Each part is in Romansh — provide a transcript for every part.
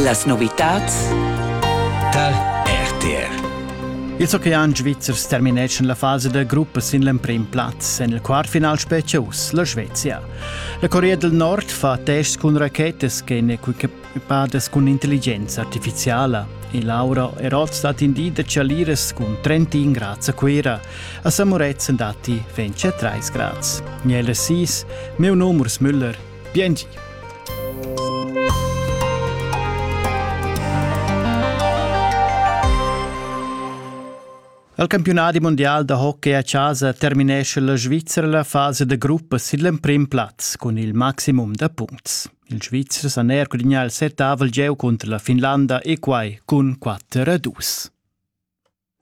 Las novitads tar RTR. Il ocean svizzer termineschan la fasa da gruppa sin l'emprim plaz. En il quartfinal spetga uss la Svezia. La Corea del Nord fa tests cun rachetas ch'èn equipadas cun intelligenza artificiala. E Laura Eroth indì da Chaliras cun 31 grads a Cuira. A Samuretzen datti 23 grads. Gnella 6, meu numers Müller Biengi. Al campionadi mondial da hockey a chasa terminesce la Svizzera la fasa da gruppa sin l'emprim plaz cun il maximum da punts. Il Svizzer san er gudignar il settavel gieu cunter la Finlanda e quai cun 4 a 2.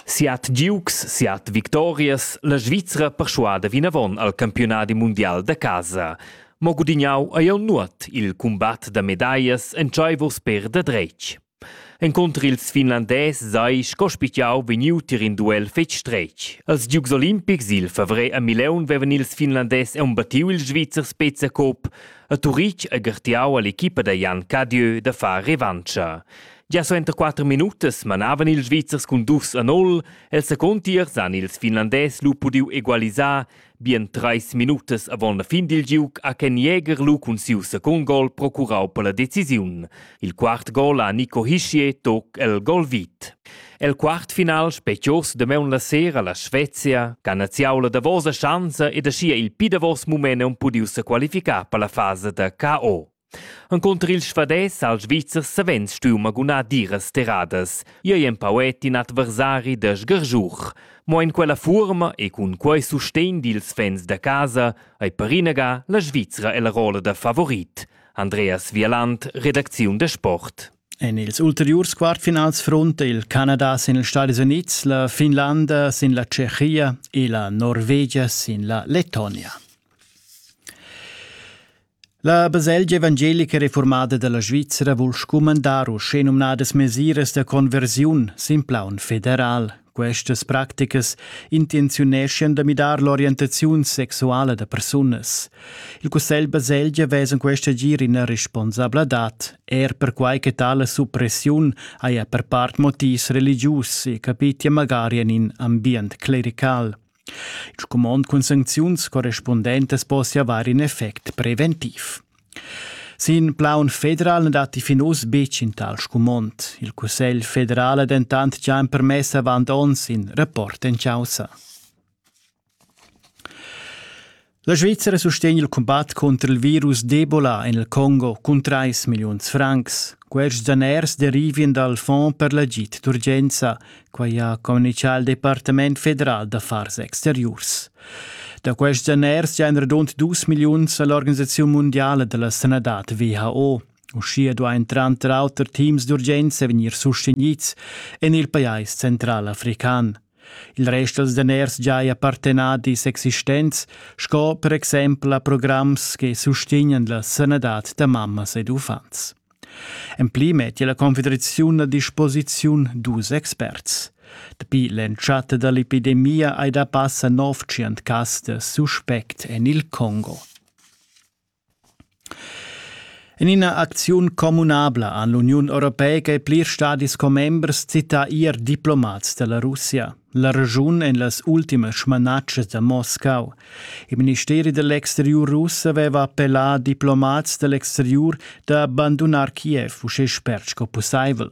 Siat giugs, siat victorias, la Svizra perschuada vinavon al campiunadi mundial da casa. Mo gudignau ei jeu nuot il cumbat da medaglias entscheivurs per da dretg. Encontr ils finlandès sei sco spitgau vegniu tier in duel fetg stretg. Als Giugs olimpics il favrer a Mileun vevan ils finlandès embattiu il Svizzer Spezia Cup a Turitg e gartiau all'equipa da Jan Cadieu da far revancha. Gia suenter quatter minutas manavan ils Svizzers cun dus a nol. El secund tier san ils Finlandès lu pudiu egualisar bien treis minutas avon la fin dil giug ha Ken Jäger lu cun siu secund gol procurau per la decisiun. Il quart gol ha Nico Hischier toc el gol vit. El quart final specios damaun la sera la Svezia, canaziaula davosa schanza ed aschia il pi davos mument un pudiu se qualificar per la fase da KO. Encunter il svadès ha il Svizzer savens stuiu magunar diras terradas. Ei ei empau et in adversari da sgargiur. Mo en quella fuorma e cun quei sustegn dils fans da casa ei per inaga la Svizra ella rolla da favorit. Andreas Wieland, redacziun da Sport. En ils ulteriurs quartfinals fronta il Canada sin ils Stadis Unids, la Finlanda sin la Tschechia e la Norvegia sin la Lettonia. La baselgia evangelica reformada dalla Svizra vul scumandar uschenumnadas mesiras da conversiun sin plaun federal. Questas practicas intenziuneschan da midar l'orientaziun sexuala da persunas. Il Cussegl Baselgia vesa questa gir ina responsabladad, er perquai che tale suppressiun haja per part motivs religius e capitia magari en in ambient clerical. Il scumond cun sancziuns correspundentas possia avair in effect preventiv. Sin plaun federal na datti fin uss betg in tal scumond. Il Cussegl federal ha dentant già empermess avant onns in rapport en chaussa. La Svizzera sustegn il cumbat cunter il virus d'Ebola en il Congo cun 3 milliuns francs. Quests daners derivien dal Fonds per l'agid d'urgenza, quai ha communitgà il Departament federal d'affars exteriurs. Da quests daners giain radund 2 milliuns a l'organisaziun mundiala da la sanadad WHO. Uschia duain tranter auter teams d'urgenza vegnir sustegnids en il pajais central african. Il rest dals daners giaja partenadis existents, sco per exempel a programs che sustegnan la sanadad da mammas ed uffants. En pli mettia la Confederaziun a disposiziun dus experts. Dapi l'entschatta da l'epidemia hai da passa 900 cas da suspect en il Congo. En ina acziun communabla han l'Uniun europeica e plirs stadis commembers cità ier diplomats da la Russia. La regiun en las ultimas smanatschas da Moscau. Il ministeri dell'exteriur russ aveva appellà diplomats dell'exteriur da bandunar Kiev uschè spert sco pussaivel.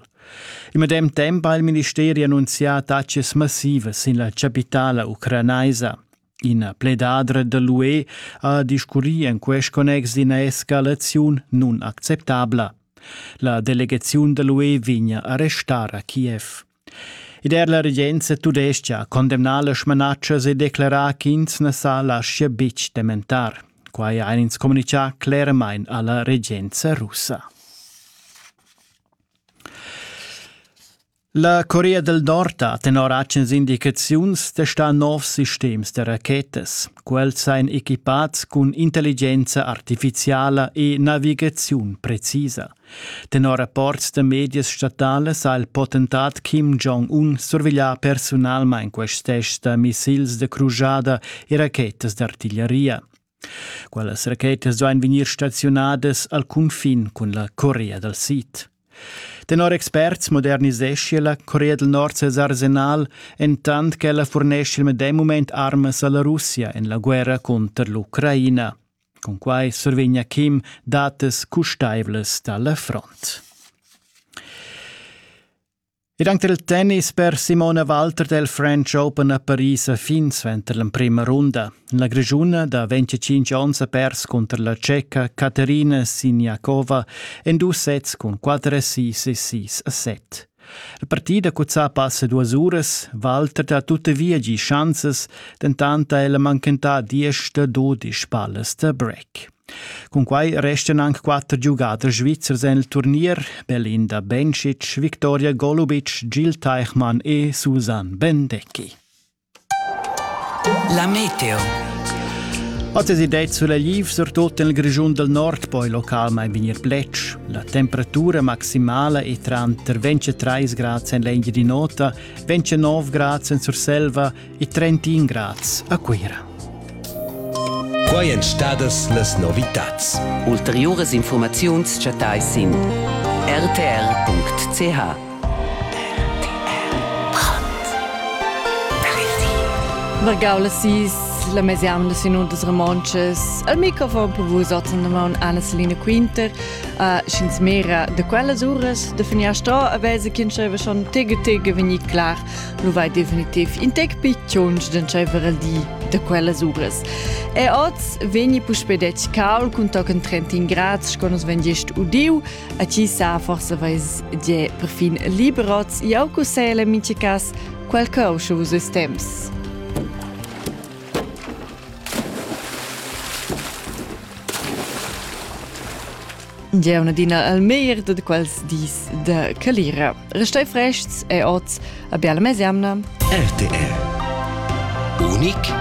Il medem temp ha il ministeri annunzià taxes massivas sin la chapitala ucranaisa. Ina pledadra da l'UE ha discurrì en quest connex d'ina escalaziun nunacceptabla. La delegaziun da l'UE vegn a arrestar a Kiev. Ed er la regenza tudestga ha condemnà las smanatschas e declerà ch'ins na sa laschia betg dementar. Quai ha ins communitgà cleramain a la regenza russa. La Corea del Nord ha tenor agens indicaziuns testà novs sistems da rachetas. Quels ein equipats cun intelligenza artificiala e navigaziun precisa. Tenor rapports da medias statalas ha il potentat Kim Jong-un surveglià personalmain quests tests da missils da crujada e rachetas d'artiglieria. Quellas rachetas duain vegnir staziunadas al cunfin cun la Corea dal Sid. Tenor experts moderniseschia la Corea del Nord ses arsenal, entant ch'ella furnescia il medem mument armas alla Russia en la guerra conter l'Ucraina. Con quai survegna Kim datas custaivlas dalla front. Ed anche il tennis per Simone Walter del French Open a Paris fin suenter l'emprima runda. La Grischuna da 25 onns ha pers cunter la Tscheca Katerina Siniakova en dus sets cun 4 6 e 6 7. La partida cuzzà passa duas uras, Walter ha tuttavia gi schanzas, dentant ha el manchentà diesch da dodisch pallas da break. Cunquai restan anc quatter giugaders svizzers en il turnier, Belinda Bencic, Victoria Golubic, Gil Teichmann e Susan Bendecki. La meteo. Oz es idea sulegl surtut nel Grischun del Nord, poi localmain vegnir plec. La temperatura maximala è tranter 23 grad en l'engia di nota, 29 grad en Surselva e 31 grads a Cuira. Quai èn stadas las novitads. Ulteriuras infurmaziuns chattais sin rtr.ch. Vargau las sis la mesianda sin undas romontschas. Al microfon per vus otzen damon Anna-Selina Quinter. Uh, Schins mera de quellas uras de finiar sto a vese kin schon tige tige veni klar nu vai definitiv in tec picciunch d'entscheiver il di da quellas uras. E oz vegni puspè detg cal cun tochen 30 grad sco nus vegn gest udiu, a chi sa forse vais die perfin liberots jau cussele mince cas quel causcio vus es temps. Giaun adina al meir da quels dis de calira. Restai frests e oz a biala mesiamna. RTR. Unic